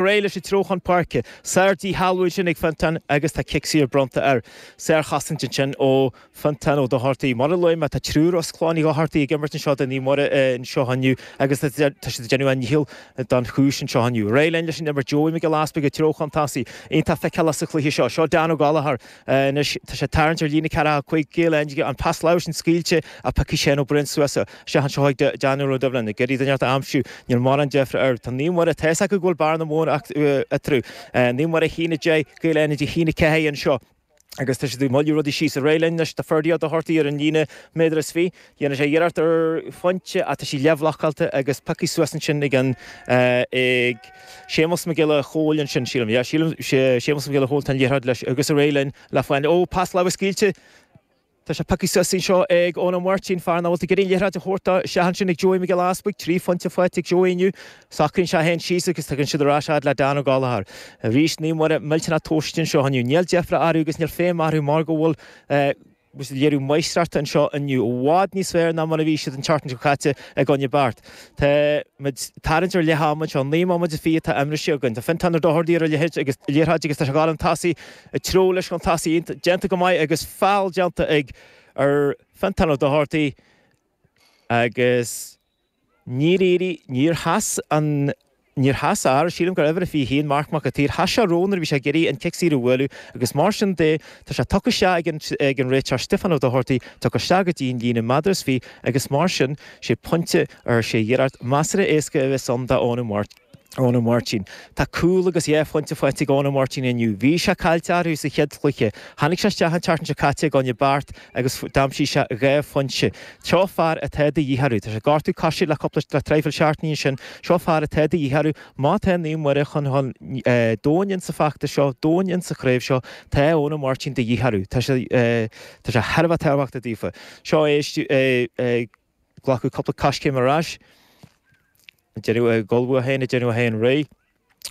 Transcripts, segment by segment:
ar aghaidh leis i dtreo chun páirce. Sár-dhíshealbhú ansin ag Fionntán agus tá cic saor bronnta air. Sárchosaint ansin ó Fionntán Ó Dochartaigh. Mar a luaigh mé, tá triúr as clann Uí Dhochartaigh ag imirt anseo do Naomh Muire anseo inniu agus tá siad ag déanamh a ndícheall don chúis anseo inniu. Ar aghaidh linn leis an imirt Joey Mac Giolla Easpaig i dtreo chun tosaigh. Iontach feiceálach sa chluiche seo. Seo Dan Ó Gallchóir. Anois tá sé ag tarraingt ar líne ceathracha cúig Gaeil Fhánada, an pas láimhe sin scaoilte ach piocfaidh Shane Ó Briain suas é isteach anseo chuig Danny Óg Ó Doibhlin. Ag iarraidh duine inteacht a aimsiú, níl mórán deifre air. Tá Naomh Muire, tá a fhios acu go bhfuil bearna mhór eatarthu. Naomh Muire a haon, a deich, Gaeil Fhánada a haon, a ceathair anseo agus tá siad ag moilliú rudaí síos. Ar aghaidh linn anois do Ferdia Ó Dochartaigh ar an líne, méadar is fiche. Déanann sé iarracht ar phointe ach tá sí leathbhlocáilte agus pioctha suas ansin ag an, ag, Séamus Mac Giolla Chomhaill ansin, sílim. Yeah, sílim. Séamus Mac Giolla Chomhaill, tá an liathróid leis agus ar aghaidh linn le foighne. Ó, pas láimhe scaoilte. Tá sé pioctha suas anseo ag Eoin Ó Máirtín, fear nach bhfuil ag iarraidh an liathróid a thabhairt dó. Isteach ansin ag Joey Mac Giolla Easpaig. Trí phointe faighte ag Joey inniu. Socraíonn sé é féin síos agus tugann sé ar ais fhad le Dan Ó Gallchóir. Arís Naomh Muire millteanach tomhaiste anseo inniu. Níl deifre orthu agus níl feidhm orthu mar go bhfuil, eh, Agus léiriú máistreachta anseo inniu, i bhfad níos fearr ná mar a bhí siad an tseachtain seo caite i gcoinne Beart. Táimid ag tarraingt ar leath ama, naoi mbomaite is fiche atá imrithe againn. Tá Fionntán Ó Dochartaigh ar, leis an liathróid agus tá sé ag gabháil chun tosaigh i dtreo leis chun tosaigh déanta go maith agus feall déanta ag ar Fionntán Ó Dochartaigh agus Níor éirigh, níor sheas an, níor sheas ár, sílim gur uimhir a 21, Marc Mac a' tSaoir, sheas sé roimhe nuair a bhí sé ag iarraidh an cic saor a bhualadh agus mar sin de tá sé tugtha isteach ag an, ag an réiteoir Stiofán Ó Dochartaigh, tugtha isteach go dtí an líne méadar is fiche agus mar sin sé pointe nó sé iarracht measartha éasca a bheas ann do Eoin Ó Máirt. Eoin Ó Máirtín, Tá cúl agus dhá phointe faighte ag Eoin Ó Máirtín inniu. Bhí sé caillte orthu sa chéad chluiche. Tháinig sé isteach an tseachtain seo caite i gcoinne Beart agus d'aimsigh sé dhá phointe. Seo fear atá de dhíth orthu. Tá sé ag gortú coise le cúpla le traidhfil seachtaine ansin. Seo fear atá de dhíth orthu. Má tá Naomh Muire chun domhain in sa feachtas seo, domhain in sa chraobh seo, tá Eoin Ó Máirtín de dhíth orthu. Tá sé thar a bheith tábhachtach daofa. Seo é Glacadh cúpla coiscéim ar ais. Tá sé ag ullmhú é féin, ag déanamh é féin réidh.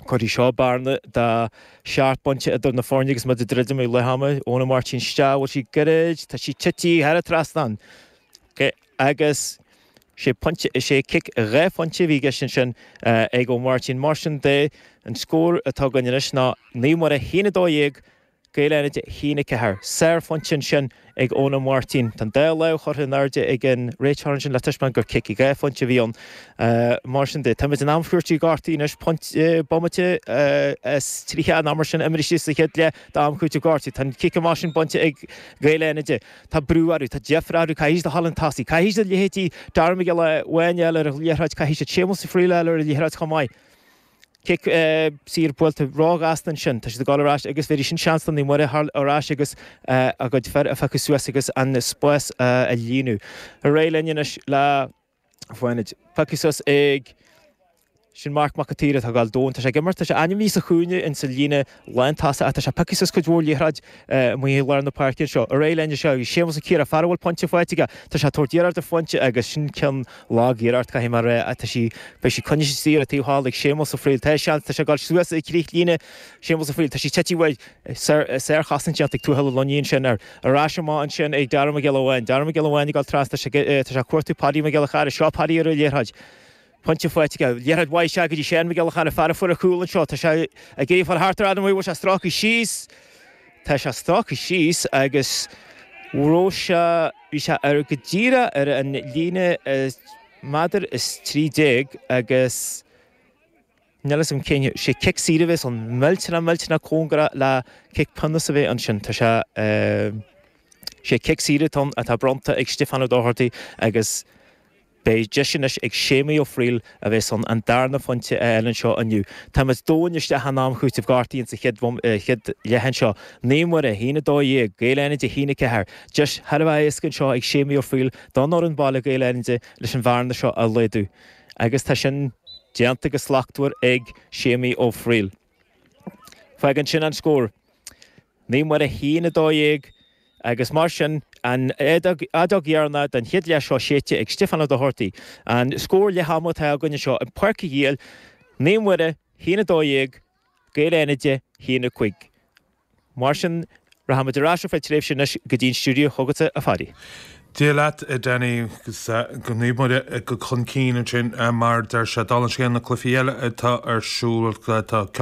Cuirfidh seo bearna de seacht bpointe idir na foirne agus muid ag druidim le leath ama. Eoin Ó Máirtín isteach, bhfuil sí gairid, tá sí ag titim thar an trasnán. Agus sé pointe, is é cic dhá phointe a bhí i gceist ansin ag Ó Máirtín. Mar sin de, an scór atá againn anois ná Naomh Muire a haon a dó dhéag Gaeil Fhánada a haon a ceathair. Sárphointe ansin ag Eoin Ó Máirtín. Tá an dá lámh curtha in airde ag an réiteoir ansin le taispeáint gur cic dhá phointe a bhí ann. Mar sin de, táimid in am cúitimh gortuithe anois. Bomaite is tríocha mar sin imrithe sa chéad leath d'am cúitimh gortuithe. Tá an cic amach sin bainte ag Gaeil Fhánada. Tá brú orthu. Tá deifir orthu. Caithfidh siad a ghabháil chun tosaigh. Caithfidh siad leithéidí Darren Mac Giolla Bháin a fháil ar an liathróid. Caithfidh siad Séamus Ó Frighil a fháil ar an liathróid chomh maith. Cic saor buailte ró-ghasta ansin. Tá siad ag dul ar ais agus bhéarfaidh sin seans do Naomh Muire a theacht ar ais agus a gcuid fir a phiocadh suas agus an spás a líonadh. Ar aghaidh linn anois le Fánaid. Pioctha suas ag sin Marc Mac a tSaoir atá ag fáil domhain. Tá sé ag imirt. Tá sé ainmnithe sa chúinne insa líne lántosaigh ach tá sé ag piocadh suas cuid mhór liathróid amuigh i lár na páirce anseo. Arae lean sé agus Séamus Ó Ciardha, fear a bhfuil pointe faighte aige, tá sé ag tabhairt iarraidh ar phointe agus sin cineál lagiarraidh, caithfidh mé a rá, ach tá sí, beidh sí coinnithe istigh ar an taobh thall ag Séamus Ó Fríl, tá seans, tá sé ag dul suas ag críoch líne Séamus Ó Fríl, tá sí tite uaidh, sárchosaint déanta ag Tuathal Ó Luinín, sin ar ais amach ansin ag Dara Mac Giolla Bháin, Dara Mac Giolla Bháin ag dul trasna, tá sé ag cuartú Paddy Mac Giolla Chearra, seo Paddy ar an liathróid, Pointe faighte aige. Liathróid mhaith isteach go dtí Seán Mac Giolla Chearra, an fear a fuair a chúl anseo. Tá sé ag iarraidh fáil thart ar Adam Mhaoir. An bhfuil sé stractha síos. Tá sé stractha síos agus bhraith sé, bhí sé ar go díreach ar an líne méadar is trí déag agus níl 'fhios a'm cén, sé cic saor a bhéas ann. Millteanach millteanach cóngarach le cic pionóis a bheith ansin. Tá sé, sé cic saor atá ann atá bronnta ag Stiofán Ó Dochartaigh agus. Beidh deis anois ag Séamaí Ó Fríl a bheith san an darna phointe a fháil anseo inniu. Táimid domhain isteach in am cúitimh gortaithe insa chéad chéad leath anseo. Naomh Muire, a haon a dó dhéag, Gaeil Fhánada a haon a ceathair. Deis thar a bheith éasca anseo ag Séamaí Ó Fríl don fhoireann baile Gaeil Fhánada leis an bhearna seo a laghdú. Agus tá sin déanta go slachtmhar ag Séamaí Ó Fríl. Fágann sin an scór Naomh Muire a haon, a dó dhéag, agus mar sin, an fheadóg dheireanach den chéad leath seo séidte ag Stiofán Ó Dochartaigh. An scór leath ama atá againn anseo in Páirc Uí Shiail, Naomh Muire a haon, a dó dhéag, Gaeil Fhánada a haon a cúig. Mar sin, rachaimid ar ais ar feadh tréimhse anois go dtí an stiúideo chugatsa, a Phaddy. Dia leat, a Danny, agus Naomh Muire chun cinn ansin, mar a deir sé. Dála an scéil, na cluichí eile atá ar siúl, tá.